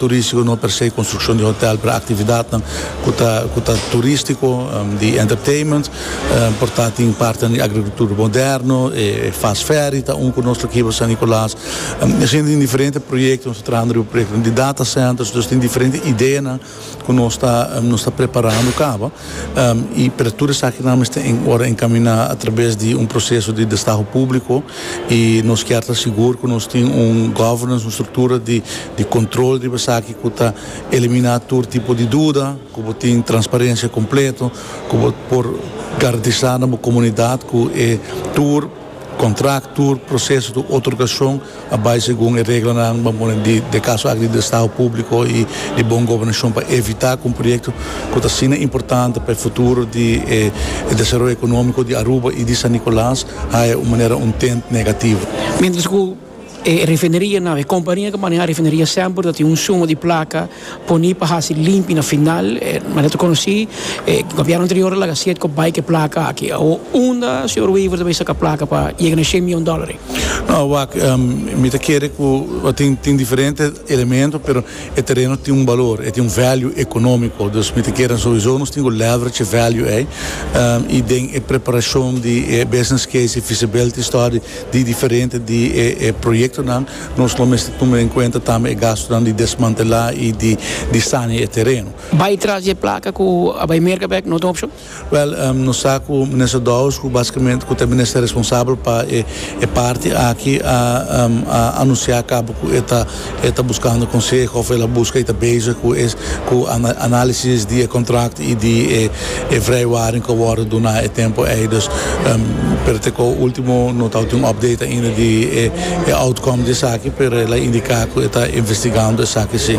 Turístiko no persé konstrukshon di hotèl pero aktividatnan ku ta turístiko di entertainment por ta tin partenan di agrikultur moderno e fast ferry ta un ku nos lo kiba San Nikolas hende tin diferente proyektonan nos ta trahando riba proyektonan di data centers nos tin diferente ideanan ku nos ta preparando kaba. y pero tur esakinan mester en ora encamina atraves di un proceso di destaho publico y nos kier ta sigur cu nos tin un governance, un structura di di control riba esaki cu ta elimina tur tipo di duda, cu bo tin transparencia completo, cu bo por garantisa na bo comunidad cu e tur. Contract tur proceso tur otorgacion a bay segun e reglanan bo a pone di e caso aki di Destado Publico y di Bon Gobernacion pa evita cu un proyecto cu ta asina importante pa e futuro di e desaroyo economico di Aruba y di San Nicolas haya un manera un tint negativo. Mientras cu. E refineria nan, e kompania ku maneha refineria semper ta tin un suma di plaka poni pa hasi limpi na final. Manera ta konosí e gobièrnu anterior a laga siet ku a bai ku e plaka aki. Awo unda señor Wever ta bai saka plaka pa yega na e shen mion dòlari? No, wak, mi ta kere ku tin tin diferente elemento, pero e tereno tin un balor, e tin un value ekonómiko. Dus mi ta kere souiso nos tin ku leverage e value ei i den e preparashon di e business case, e feasibility study. Di diferente di e proyectonan nos lo mester tuma den cuenta tambe e gastonan di desmantela y di sania e tereno. Bay tras di e placa cu a bay merca bek no ta un opcion? Wel, nos sa cu Minister Dowers, cu basicamente cu ta e Minister responsabel pa e parti aki, a anuncia caba cu e ta e ta buskando konseho òf el a buska i ta bezig ku e ku análisis di e kontrakt i di e e vrijwaring ku a wòrdu duna e tempu ei. Dus pero te ko último no tabata un òpdate ainda di e e outcome di esaki pero el a indiká ku e ta investigando esaki sí.